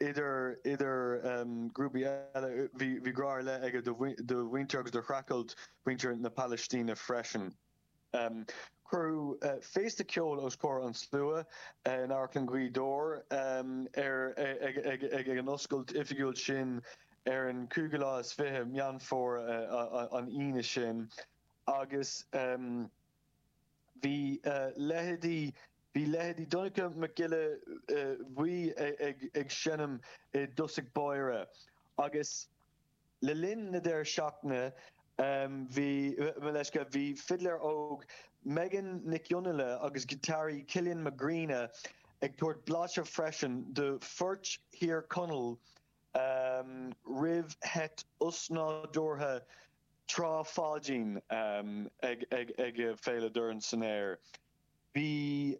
idir grúpaí eile, bhí grá ar leith aige do mhuintir agus do shreachailt mhuintir na Palaistíne freisin. Cuireadh féasta ceoil os comhair an tslua in Amharclann Ghaoth Dobhair ag an oscailt oifigiúil sin ar an 25ú lá Meán Fómhair, an Aoine sin, agus. Bhí leithéidí Bhí leithéidí Donncha Mac Giolla Bhuí ag seinm i dtosach báire agus le linn na deireadh seachtaine bhí mo leithscéal bhí fidléir óg Megan Nic Fhionnghaile agus giotáraí Cillian Mac Grianna ag tabhairt blaiseadh freisin do phoirt Thír Chonaill roimh sheit osnádúrtha Trá Pháidín ag Féile Dorn san Aer. Bhí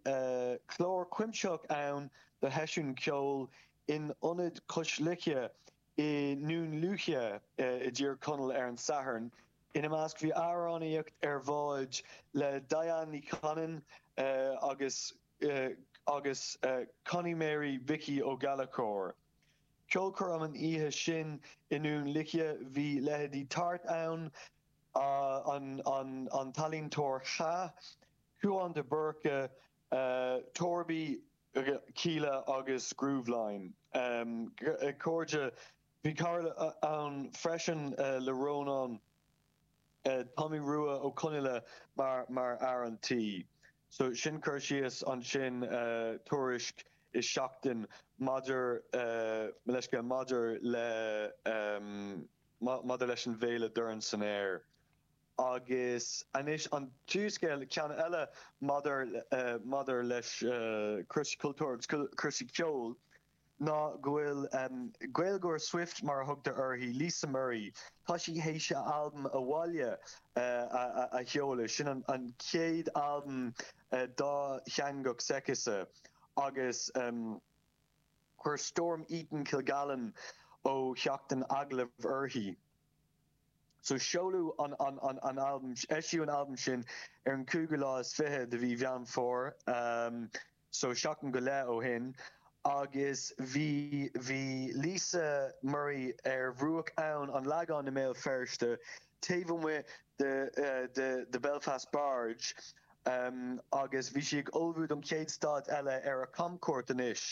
clár cuimsitheach ann do sheisiún ceoil in Ionad Cois Locha i nDún Lúiche i dTír Chonaill ar an Satharn. Ina measc bhí amhránaíocht ar bhád le Diane Ní Chanainn agus agus Connie Mhary Mhicí Ó Gallchóir. Ceolchoirm an oíche sin i nDún Lúiche, bhí leithéidí Huartan, an t-ealaíontóir Cha, Cúán de Búrca, Torby, Kíla agus Grooveline, cairde. Bhí cara ann freisin le Rónán. Tomaí Rua Ó Conghaile mar fhear an tí. So sin cur síos, ansin tuairisc i Seachtain maidir, mo leithscéal, maidir le, maidir leis an bhféile Dorn san Aer. Agus anois an tríú scéal, ceann eile maidir, maidir leis cúrsaí cultúir agus cúrsaí ceoil. ná go bhfuil Gaeilgeoir Swift, mar a thugtar uirthi, Lisa Murray, tá sí théis a albam Abhaile a sheoladh. Sin an chéad albam dátheangach s'aici agus chuir Storm Eaton-Kilgallen ó Sheachtain agallamh uirthi. So seoladh an albam, eisíodh an albam sin ar an cúigiú lá is fiche de mhí Mheán Fómhair. so seachtain go leith ó shin agus bhí, bhí Lisa Murray ar bhruach abhainn an Lagáin i mBéal Feirste, taobh amuigh de, de, de Belfast Barge agus bhí sí ag ullmhú don chéad stad eile ar a camchuairt anois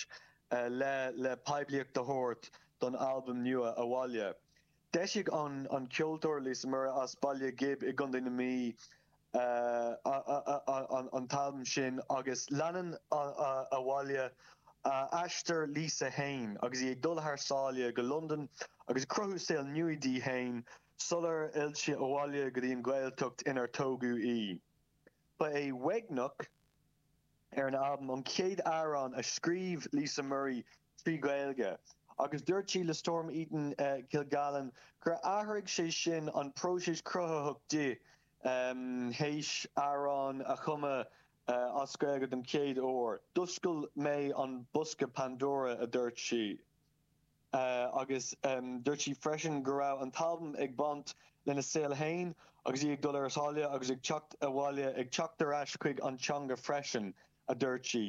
le, le poiblíocht a thabhairt don albam nua, Abhaile. D'eisigh an ceoltóir Lisa Murray as Baile Ghib i gContae na Mí an t-albam sin agus leanann abhaile aistear Lisa féin agus í ag dul thar sáile go Londain agus ag cruthú saol nua di féin sular fhill sí abhaile go dtí an Ghaeltacht inar tógadh í. Ba é Uaigneach. ar an albam, an chéad amhrán a scríobh Lisa Murray trí Ghaeilge, agus dúirt sí le Storm Eaton-Kilgallen gur athraigh sé sin an próiseas cruthaitheach di théis amhrán a chumadh as Gaeilge don chéad uair. D'oscail mé an bosca Pandora, a dúirt sí. agus dúirt sí freisin go raibh an t-albam ag baint lena saol féin agus í ag dul thar sáile agus ag teacht abhaile, ag teacht ar ais chuig an teanga freisin, a dúirt sí.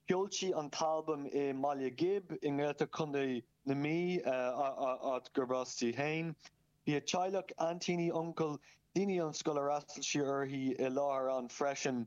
Sheol sí an t-albam i mBaile Ghib i nGaeltacht Chontae na Mí, áit gurb as di féin. Bhí a teaghlach, aintíní, uncail, daoine ón scoil ar fhreastail sí uirthi, i láthair ann freisin.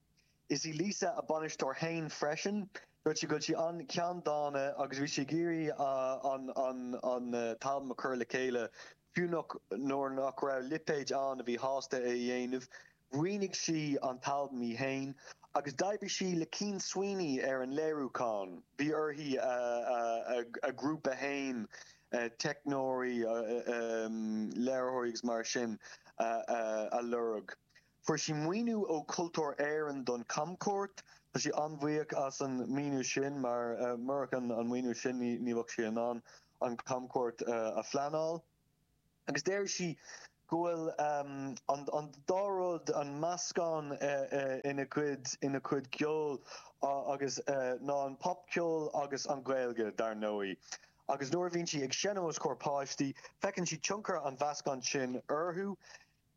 Is í Lisa a bainisteoir féin freisin. Dúirt sí go bhfuil sí an-cheanndána agus bhí sí ag iarraidh an t-albam a chur le chéile fiú nach nuair nach raibh lipéid ann a bhí sásta é a dhéanamh. Mhaoinigh sí an t-albam í féin agus d'oibrigh sí le Cian Sweeney ar an léiriúchán. Bhí uirthi a grúpa féin, teicneoirí, léiritheoirí agus mar sin a lorg. Fuair sí maoiniú ó Cultúr Éireann don chamchuairt. Tá sí an-bhuíoch as an maoiniú sin mar murach an maoiniú sin ní bheadh sí in ann an chamchuairt a phleanáil. Agus deir sí go bhfuil an dá rud, an meascán ina cuid ina cuid ceoil agus sin ná an popcheol agus an Ghaeilge, dar ndóigh. Agus nuair a bhíonn sí ag seinm os comhair páistí, feiceann sí tionchar an mheascáin sin orthu.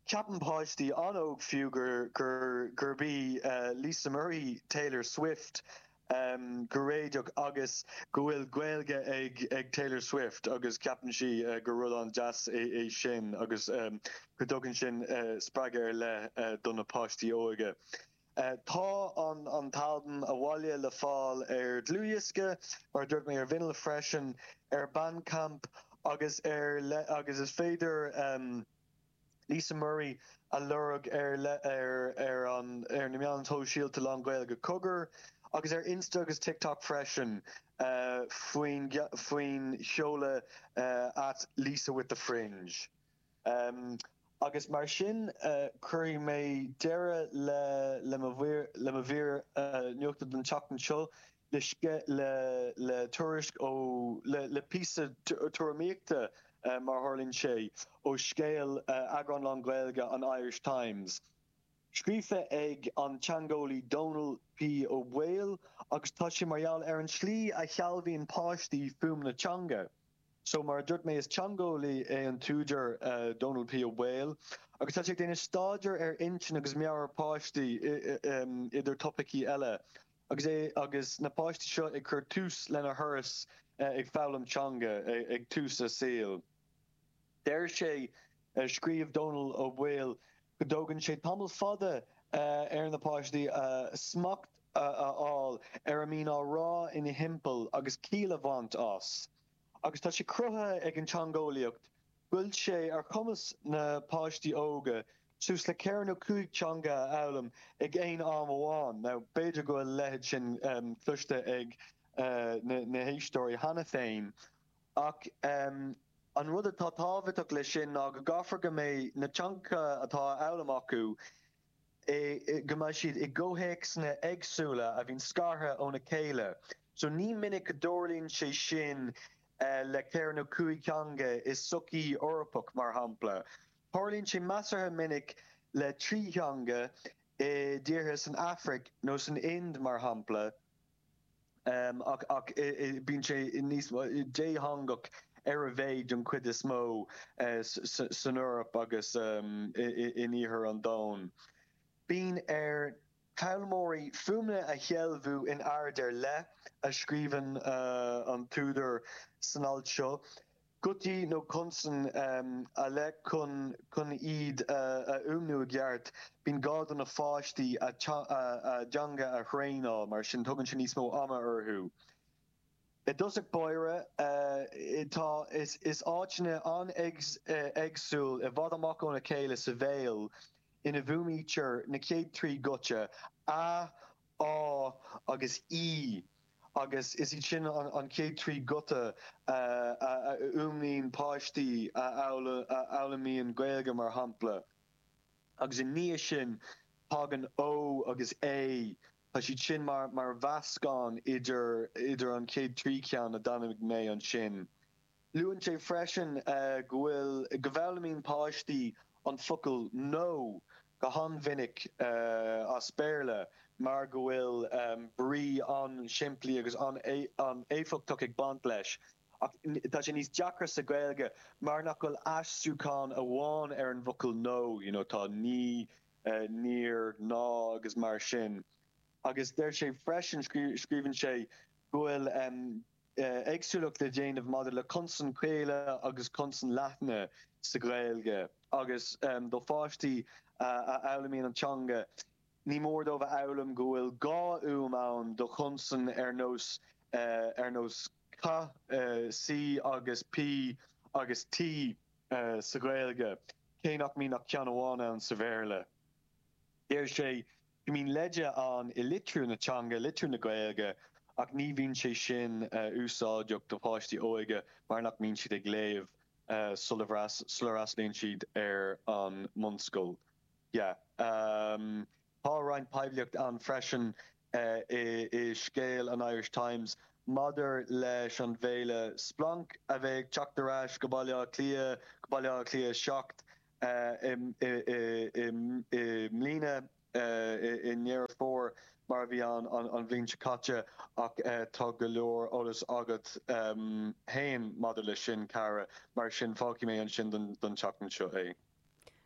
Ceapann páistí an-óg fiú gur gurb í Lisa Murray Taylor Swift go réidheach agus go bhfuil Gaeilge ag ag Taylor Swift agus ceapann sí gur rud an-deas é sin agus go dtugann sin spreagadh ar leith do na páistí óige. Tá an t-albam Abhaile le fáil ar dhlúthdhiosca, mar a dúirt mé, ar vinil freisin, ar Bandcamp agus araile agus is féidir, Lisa Murray a lorg ar ar ar na meáin shóisialta lán-Ghaeilge, Cogar, agus ar Insta agus TikTok freisin faoi faoin seoladh at lisawiththefringe. Agus mar sin cuirfidh mé deireadh le mo mhír nuachta don tseachtain seo. le tuairisc, ó, le píosa tuairimíochta, mar a tharlaíonn sé, ó scéal, eagrán lán Gaeilge an Irish Times, scríofa ag an teangeolaí Dónall P. Ó Baoill, agus tá sé mar gheall ar an tslí a shealbhaíonn páistí fuaimeanna teanga. So, mar a dúirt mé, is teangeolaí é an t-údar, Dónall P. Ó Baoill, agus tá sé ag déanamh staidéir ar intinn agus meabhair páistí, idir topaicí eile. Agus é agus na páistí seo ag cur tús lena dturas ag foghlaim teanga ag tús a saoil, deir sé, scríobh Dónall Ó Baoill go dtógann sé tamall fada ar na páistí smacht a fháil ar a mbíonn á rá ina dtimpeall agus ciall a bhaint as. agus tá sé cruthaithe ag an teangeolaíocht go bhfuil sé ar chumas na páistí óga suas le ceithre nó cúig teanga a fhoghlaim ag aon am amháin. Now, b'fhéidir go bhfuil a leithéid sin cloiste ag na héisteoirí cheana féin, ach an rud atá tábhachtach leis sin ná go gcaithfear go mbeidh na teangacha atá á bhfoghlaim acu, go mbeidh siad i gcomhthéacsanna éagsúla a bhíonn scartha óna chéile. So ní minic go dtarlaíonn sé sin le ceithre nó cúig theanga i sochaí Eorpach, mar shampla. Tarlaíonn sé measartha minic le trí theanga i dtíortha san Afraic nó san Ind, mar shampla. ach bíonn sé níos dátheangach ar a mhéid den chuid is mó san Eoraip agus in iarthar an domhain. Bíonn ar fhoghlaimeoirí fuaimeanna a shealbhú in ord ar leith, a scríobhann an t-údar san alt seo. gutaí nó consain ar leith chun chun iad a fhuaimniú i gceart. Bíonn gá do na páistí a dteanga a thraenáil, mar sin tugann sé níos mó ama orthu. I dtosach báire, tá áiteanna an-éagsúil i bhfad amach óna chéile sa bhéal ina bhfuaimnítear na chéad trí ghuta, a, á agus í agus is iad sin an chéad trí ghuta a fhuaimníonn páistí a fhoghlaimíonn Gaeilge, mar shampla, agus i ndiaidh sin tagann ó agus é, tá siad sin mar mheascán idir an chéad trí cheann a d'ainmnigh mé ansin. Luann sé freisin go bhfuil, go bhfoghlaimíonn páistí an focal 'No' go han-mhinic as Béarla mar go bhfuil brí an-simplí agus an-éifeachtach ag baint leis. Ach tá sé níos deacra sa Ghaeilge mar nach bhfuil aistriúchán amháin ar an bhfocal 'No', you know, tá 'Ní', 'Níor', 'Ná' agus mar sin. Agus deir sé freisin, scríobhann sé, go bhfuil. éagsúlacht le déanamh maidir le consain chaola agus consain leathna sa Ghaeilge agus do pháistí a fhoghlaimíonn an teanga ní mór dóibh a fhoghlaim go bhfuil dhá fhuaim ann do chonsain ar nós ar nós C, C agus P agus T sa Ghaeilge cé nach mbíonn ach ceann amháin ann sa Bhéarla. Deir sé. go mbíonn leide ann i litriú na teanga, litriú na Gaeilge, ach ní bhíonn sé sin úsáideach do pháistí óige mar nach mbíonn siad ag léamh sula bhfreastlaíonn siad ar an mbunscoil. Tá roinnt poiblíocht ann freisin i scéal an Irish Times maidir leis an bhféile Splanc a bheidh ag teacht ar ais go Baile Átha Cliath, go Baile Átha Cliath 7, i mbliana i nDeireadh Fómhair mar a bhí ann an bhliain seo caite ach tá go leor eolais agat féin maidir leis sin, a Chiara, mar sin fágfaidh mé ansin don tseachtain seo é.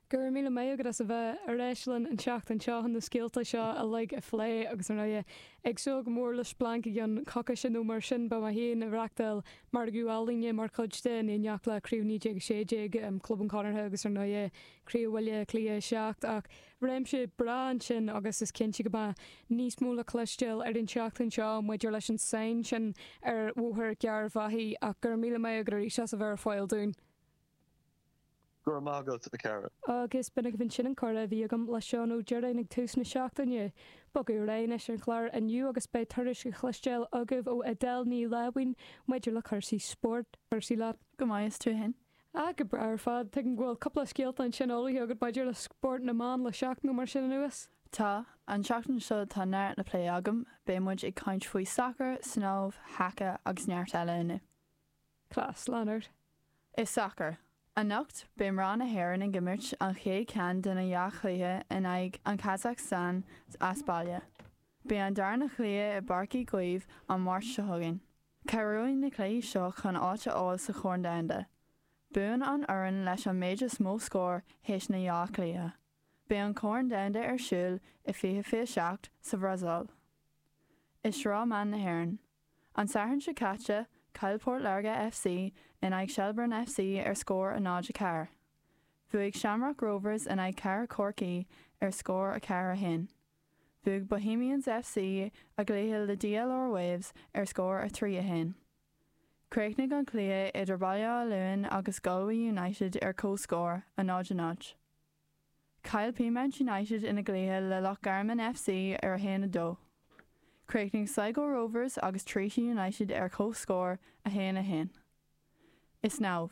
Go raibh míle maith agat as a bheith ar ais linn an tseachtain seo chun na scéalta seo uilig a phlé agus, ar ndóigh, ag súil go mór le Splanc i gceann coicíse nó mar sin, beidh mé féin ag reachtáil Margadh ealaíne mar chuid de, in éineacht le Craobh 1916, Club an Chonartha agus, ar ndóigh, Craobh Bhaile Átha Cliath 7. Ach réimse breá ansin agus is cinnte go mbeidh níos mó le cloisteáil ar an tseachtain seo maidir leis an tsáinn sin ar Bhóthar Gharbhachaidh. Ach go raibh míle maith agat arís as a bheith ar fáil dúinn. Go raibh maith agat, a Chiara. Agus b'in agaibh ansin an comhrá a bhí agam le Seán Ó Direáin ag tús na seachtaine. Bogadh ar aghaidh anois ar an chlár inniu agus beidh tuairisc a chloisteáil agaibh ó Edel Ní Láimhín maidir le cúrsaí spóirt. Cúrsaí leat? Go maith, is tú fhéin? Ah, go breá ar fad. Tuigim go bhfuil cúpla scéalta ansin ullmhaithe agat maidir le spórt na mban le seachtain nó mar sin anuas? Tá. An tseachtain seo tá neart le plé agam, beidh muid ag caint faoi sacar, snámh, haca agus neart eile inniu. Class, lean ort. I sacar, anocht beidh mná na hÉireann ag imirt an chéad cheann de na dhá chluiche in aghaidh an Kazakhstan as baile. Beidh an darna cluiche i bPáirc Uí Chaoimh an Máirt seo chugainn. Cabhróidh na cluichí seo chun áit a fháil sa Chorn Domhanda. Buann an fhoireann leis an méid is mó scór théis na dhá chluiche. Beidh an Corn Domhanda ar siúl i 2027 sa Bhrasaíl. I Sraith mBan na hÉireann. An Satharn seo caite, chaill Port Láirge FC in aghaidh Shelbourne FC ar scór a 0, 4. Bhuaigh Shamrock Rovers in aghaidh Chathair Chorcaí ar scór a 4, 1. Bhuaigh Bohemians FC a gcluiche le DLR Waves ar scór a 3, 1. Chríochnaigh an cluiche idir Baile Átha Luain agus Galway United ar comhscór, a 0, 0. Chaill Peamount United ina gcluiche le Loch Garman FC ar 1, 2. Chríochnaigh Sligo Rovers agus Treaty United ar comhscór, 1, 1. I Snámh.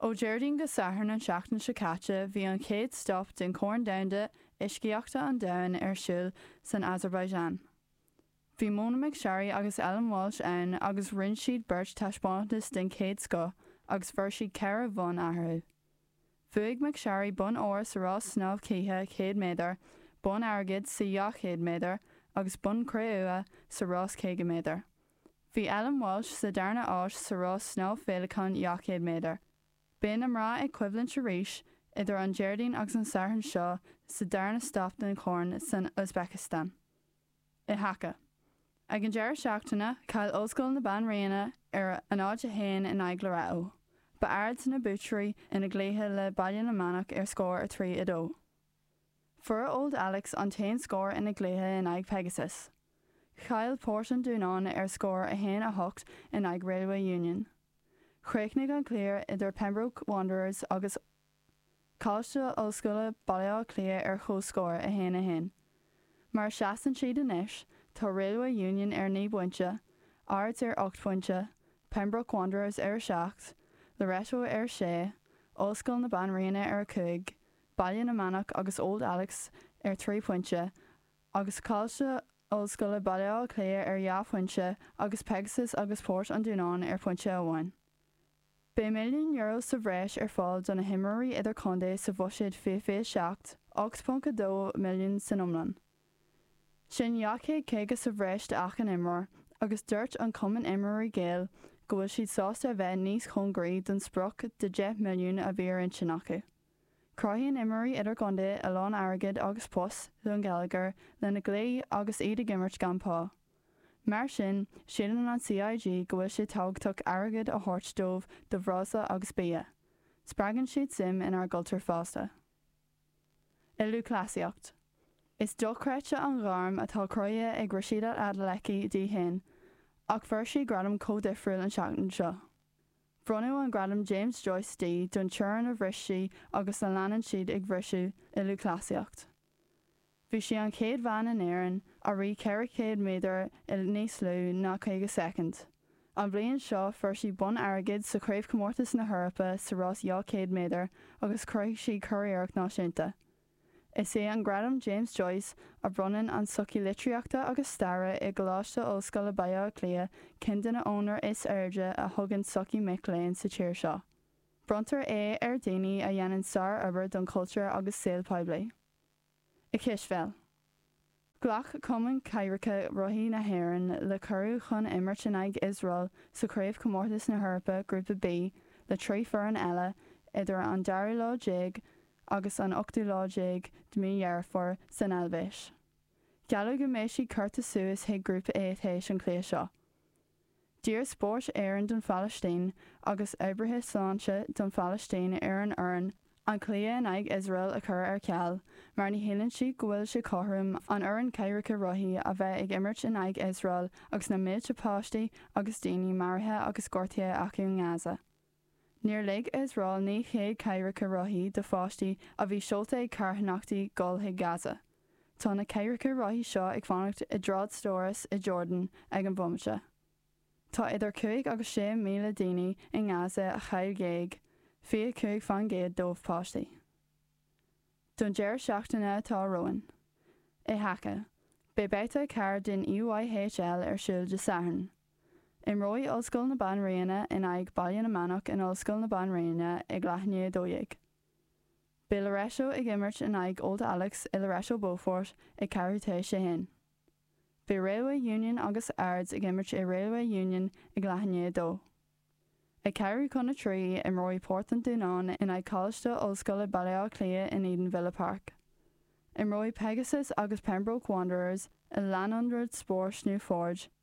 Ó Déardaoin go Satharn an tseachtain seo caite bhí an chéad stop den Chorn Domhanda Uiscíochta an Domhain ar siúl san Azerbaijan. Bhí Mona McSharry agus Ellen Walsh ann agus rinne siad beirt taispeántas den chéad scoth agus fuair siad ceithre bhonn eatharthu. Bhuaigh McSharry bonn óir sa rás snámh cíche 100 méadar, bonn airgid sa 200 méadar agus bonn cré-umha sa rás 50 méadar. Bhí Ellen Walsh sa darna áit sa rás snámh féileacáin 200 méadar. Beidh na mná ag coimhlint arís idir an Déardaoin agus an Satharn seo sa darna stop den Chorn san Uzbekistan. I haca. Ag an deireadh seachtaine, chaill Ollscoil na Banríona ar a 0, 1 in aghaidh Loreto. Ba Ards na buaiteoirí ina gcluiche le Baile na Manach ar scór 3, 2. Fuair Old Alex an t-aon scór ina gcluiche in aghaidh Pegasus. Chaill Port an Dúnáin ar scór 1, 8 in aghaidh Railway Union. Chríochnaigh an cluiche idir Pembroke Wanderers agus. Coláiste Ollscoile Baile Átha Cliath ar chomhscór, 1, 1. Mar a sheasann siad anois, tá Railway Union ar naoi bpointe, Ards ar ocht bpointe, Pembroke Wanderers ar a seacht, Loreto ar a sé, Ollscoil na Banríona ar a cúig, Baile na Manach agus Old Alex ar thrí phointe, agus Coláiste Ollscoile Baile Átha Cliath ar dhá phointe agus Pegasus agus Port an Dúnáin ar phointe amháin. Beidh milliún euro sa bhreis ar fáil do na himreoirí idirchontae sa bhuiséad 2027, 8.2 milliún san iomlán. Sin 250 sa bhreis d'achan imreoir agus dúirt an Cumann Imreoirí Gael go bhfuil siad sásta a bheith níos cóngaraí don sprioc de 10 milliún a bhí ar intinn acu. Cruthaíonn imreoirí idirchontae a lán airgid agus post don gheilleagar lena gcluichí agus iad ag imirt gan pá. Mar sin, síleann an CIG go bhfuil sé tábhachtach airgead a thabhairt dóibh do bhreosla agus bia. Spreagann siad suim inár gcultúr fosta. I lúthchleasaíocht. Is dochreidte an ghairm atá cruthaithe ag Rhasidat Adeleke di féin, ach fuair sí gradam an-difriúil an tseachtain seo. Bronnadh an gradam James Joyce di don teorainn a bhris sí agus a leanann sí á bhriseadh i lúthchleasaíocht. Bhí sí an chéad bhean in Éirinn a rith 400 méadar i níos lú ná 50 soicind. An bhliain seo, fuair sí bonn airgid sa Chraobhchomórtas na hEorpa sa rás 200 méadar agus chruthaigh sí curiarracht náisiúnta. Is é an Gradam James Joyce, a bhronnann an tSochaí Litríochta agus Staire i gColáiste Ollscoile Baile Átha Cliath, ceann de na onóracha is airde a thugann sochaí mic léinn sa tír seo. Bronntar é ar dhaoine a dhéanann sárobair don chultúr agus saol poiblí. I gcispheil, ghlac Cumann Cathaoireacha Rothaí na hÉireann le cuireadh chun imirt in aghaidh Iosrael sa Chraobhchomórtas na hEorpa Grúpa B le trí foireann eile idir an dara lá déag agus an ochtú lá déag de mí Dheireadh Fómhair san Eilvéis. Gealladh go mbeidh siad curtha suas chuig Grúpa A tar éis an chluiche seo. D'iarr Spórt Éireann don Phalaistín agus oibrithe sláinte don Phalaistín ar an fhoireann an cluiche in aghaidh Iosrael a chur ar ceal mar ní shíleann siad go bhfuil sé cothrom an fhoireann cathaoireacha rothaí a bheith ag imirt in aghaidh Iosrael agus na mílte páistí agus daoine maraithe agus gortaithe acu in Gaza. Níor lig Iosrael 900 cathaoireacha rothaí do pháistí a bhí seolta ag carthanachtaí dul chuig Gaza. Tá na cathaoireacha rothaí seo ag fanacht i dtrádstóras i Jordan ag an bhomaite. Tá idir 5 agus 6 míle daoine i nGaza a chaill géag, 25% dóibh páistí. Don deireadh seachtaine atá romhainn, i haca, beidh babhta a ceathair den EYHL ar siúl Dé Sathairn, Imreoidh Ollscoil na Banríona in aghaidh Baile na Manach in Ollscoil na Banríona ag leath i ndiaidh a dó dhéag. Beidh Loreto ag imirt in aghaidh Old Alex i Loreto Beaufort ag ceathrú tar éis a haon. Beidh Railway Union agus Ards ag imirt i Railway Union ag leath i ndiaidh a dó. Ag ceathrú chun a trí, imreoidh Port an Dúnáin in aghaidh Coláiste Ollscoile Baile Átha Cliath in Edenvilla Park. Imreoidh Pegasus agus Pembroke Wanderers i Lanyon Rink Sports Newforge.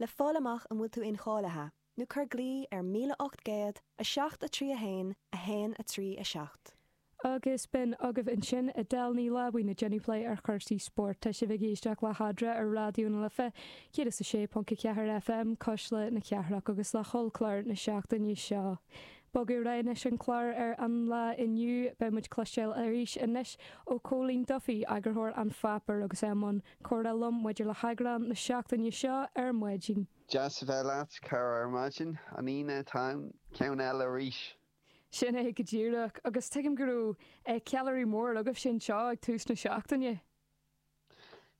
le fáil amach an bhfuil tú incháilithe, nó cuir glaoch ar 1807 3 1 1 3 7. Agus b'in agaibh ansin Edel Ní Láimhín ag déanamh plé ar chúrsaí spóirt. Tá sibh ag éisteacht le Adhmhaidin ar Raidió na Life 106.4 FM, Cuisle na Cathrach agus le hollchlár na seachtaine seo. Bogadh ar aghaidh anois an clár ar an lá inniu. Beidh muid ag cloisteáil arís anois ó Cóilín Duffy, eagarthóir an pháipéir agus é i mbun comhrá liom maidir le heagrán na seachtaine seo ar maidin. Deas a bheith leat, cara, ar maidin an Aoine atá ann, ceann eile arís! Sin é go díreach, agus tuigim go raibh ceiliúradh mór agaibhse anseo ag tús na seachtaine.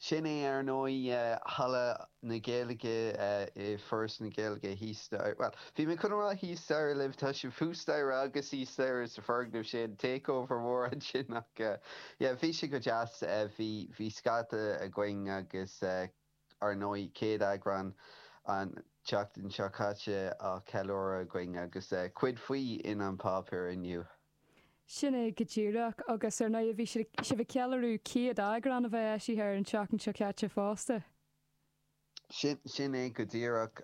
Sin é ar ndóigh, Halla na Gaeilge i bhForas na Gaeilge thíos staighre, bhuel, bhí mé chun a rá thíos staighre libh, tá sibh thuas staighre agus thíos staighre sa foirgneamh sin, takeover mór ansin ach. Yeah, bhí sé go deas. Bhí, bhí scata againn agus ár ndóigh céad eagrán an tseachtain seo caite á cheiliúradh againn agus cuid faoi in An Páipéar inniu. Sin é go díreach. Agus ar ndóigh bhí siad, sibh ag ceiliúradh céad eagrán a bheith eisithe an tseachtain seo caite fosta. Sin, sin é go díreach.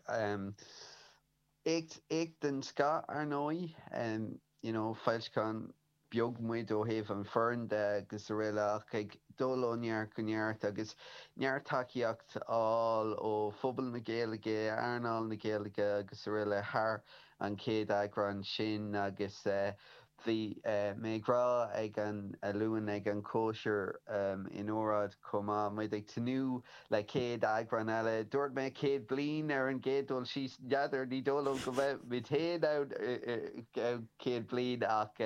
Éacht, éacht den scoth ar ndóigh, you know, foilseachán beag muid ó thaobh an fhoireann de agus aroile ach ag dul ó neart go neart agus neart tacaíocht á fháil ó phobal na Gaeilge, earnáil na Gaeilge agus aroile thar an chéad eagrán sin agus bhí mé ag rá ar an Luan ag an chóisir in óráid chomh maith, muid ag tnúth Le céad eagrán eile, dúirt mé céad bliain ar an gcéad dul síos. N'fheadar, ní dóigh liom go mbeimid féin ann céad bliain ach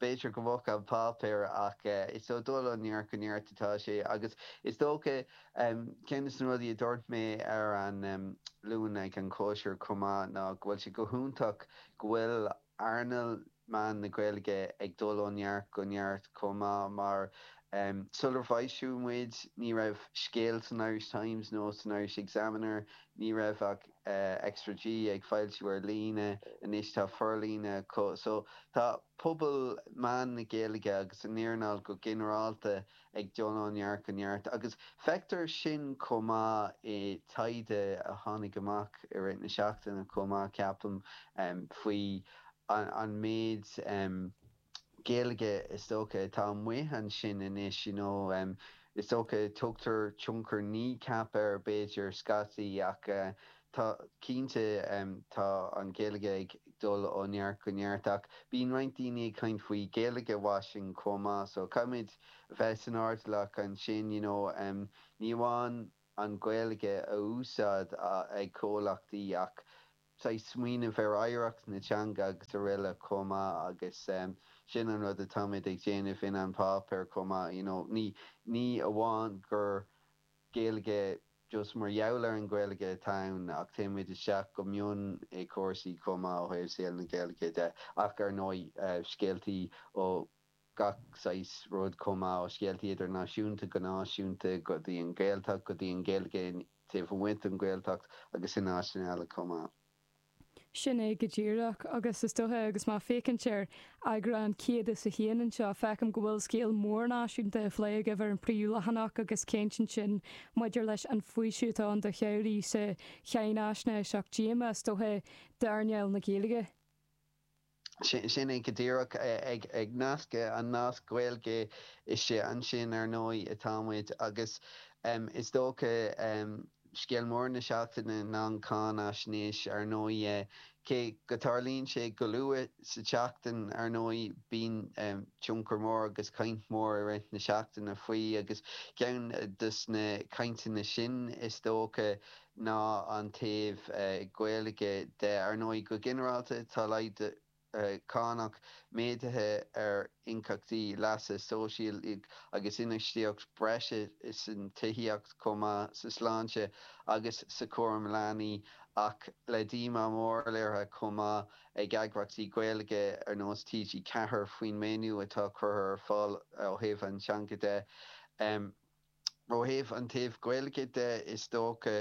b'fhéidir go mbeadh An Páipéar. Ach is ag dul ó neart go neart atá sé. Agus is dócha, ceann de na rudaí a dúirt mé ar an Luan ag an chóisir chomh maith ná go bhfuil sé go hiontach go bhfuil an. earnáil mheáin na Gaeilge ag dul ó neart go neart chomh maith mar, sular foilsíodh muid, ní raibh scéal san Irish Times nó san Irish Examiner, ní raibh ach Extra G ag foilsiú ar líne, anois tá forlíonadh acu. So, tá pobal mheáin na Gaeilge agus an earnáil go ginearálta ag dul ó neart go neart. Agus feictear sin chomh maith i taighde a tháinig amach i rith na seachtaine chomh maith, ceapaim, faoi an méid Gaeilge is dócha atá amuigh ansin anois, you know. Is dócha tugtar tionchar Kneecap air, b'fhéidir, scaití ach. Tá, cinnte, tá an Ghaeilge ag dul ó neart go neart ach bíonn roinnt daoine ag caint faoi Gaeilge washing chomh maith so caithfimid bheith saghas airdeallach ansin you know ní amháin an Ghaeilge a úsáid ag comhlachtaí ach saghas smaoineamh ar oidhreacht na teanga agus aroile chomh maith agus sin an rud atáimid ag déanamh in An Páipéar chomh maith you know ní amháin gur Gaeilge just mar gheall ar an Ghaeilge atá ann ach téimid isteach go mion i cúrsaí chomh maith ó thaobh saol na Gaeilge de ach ar ndóigh scéaltaí ó gach saghas rud chomh maith ó scéaltaí idirnáisiúnta go náisiúnta go dtí an Ghaeltacht go dtí an Ghaeilge taobh amuigh den Ghaeltacht agus in áiteanna eile chomh maith. Sin é go díreach, agus is dóiche, agus mé ag féachaint ar eagrán 101 anseo, feicim go bhfuil scéal mór náisiúnta á phlé agaibh ar an phríomhleathanach agus ceann sin maidir leis an bhfaoiseamh atá ann do shaothraithe sa cháinaisnéis ach díomá, is dóiche, d'earnáil na Gaeilge. Sin é go díreach, ag nascadh an nasc Gaeilge istigh ansin, ar ndóigh, atá muid. Agus is dócha, scéal mór na seachtaine ná an cháinfhaisnéis, ar ndóigh. Cé go dtarlaíonn sé go luath sa tseachtain, ar ndóigh, bíonn tionchar mór agus caint mhór i rith na seachtaine faoi. Agus ceann dos na cainteanna sin, is dócha, ná an taobh Gaeilge de. Ar ndóigh, go ginearálta, tá laghdú cánach méadaithe ar íocaíochtaí leasa sóisialaigh agus infheistíocht breise san tithíocht chomh maith, sa tsláinte agus sa chúram leanaí, ach le díomá mór léirithe chomh maith ag eagraíochtaí Gaeilge ar nós TG4 faoin maoiniú atá curtha ar fáil ó thaobh an teanga de. Ó thaobh an taobh Gaeilge de is dócha,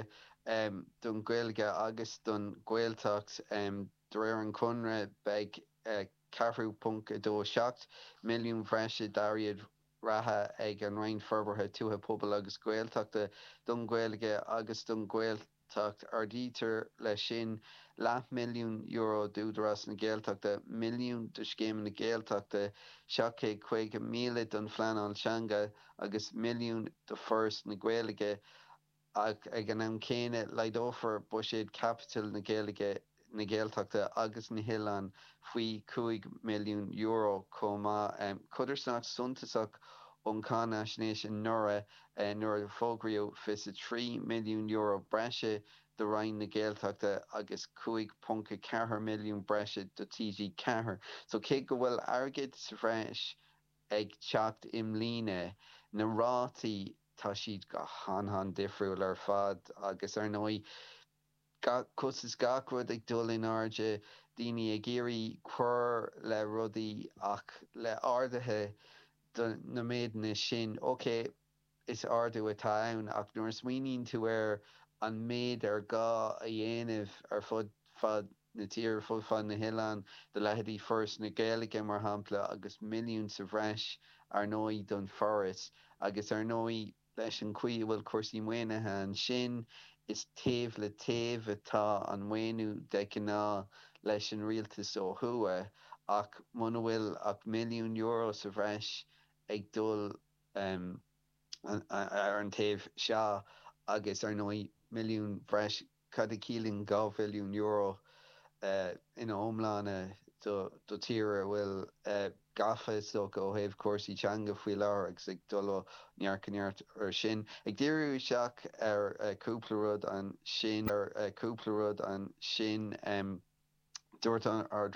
don Ghaeilge agus don Ghaeltacht, de réir an Chonradh beidh 4.27 milliún bhreise d'airgead reatha ag an Roinn Forbartha Tuaithe, Pobail agus Gaeltachta don Ghaeilge agus don Ghaeltacht. Ghaeltacht. Ardaítear leis sin leathmhilliún euro d'Údarás na Gaeltachta, milliún do scéimeanna Gaeltachta, 750,000 don phleanáil teanga agus milliún do Fhoras na Gaeilge ach ag an am céanna laghdófar buiséad caipitil na Gaeilge na Gaeltachta agus na nOileán faoi €5 milliún chomh maith. Codarsnacht suntasach ón cháinaisnéis anuraidh nuair a fógraíodh €23 milliún breise do Roinn na Gaeltachta agus 5.4 milliún breise do TG4. So cé go bhfuil airgead sa bhreis ag teacht i mbliana, na rátaí, tá siad go han-han difriúil ar fad agus ar ndóigh, Cos is gach rud ag dul in airde, daoine ag iarraidh cur le rudaí ach le arduithe do na méideanna sin, ok, is ardú atá ann ach nuair a smaoiníonn tú air, an méid ar gá a dhéanamh ar fud fad na tíre, fud fad na hoileán, do leithéidí Foras na Gaeilge, mar shampla, agus milliún sa bhreis, ar ndóigh, don Foras, agus ar ndóigh, Leis an gcaoi a bhfuil cúrsaí maoinithe ansin, is taobh le taobh atá an maoiniú de ghnáth leis an rialtas ó thuaidh, ach muna bhfuil ach milliún euro sa bhreis ag dul ar an taobh seo, agus ar ndóigh milliún bhreis Cad a chiallaíonn €2 mhilliún ina iomláine do tír a bhfuil gafa, is dócha, ó thaobh cúrsaí teanga faoi láthair agus ag dul ó neart go neart air sin? Ag díriú isteach ar chúpla rud ansin, dúirt an Ard-Rúnaí,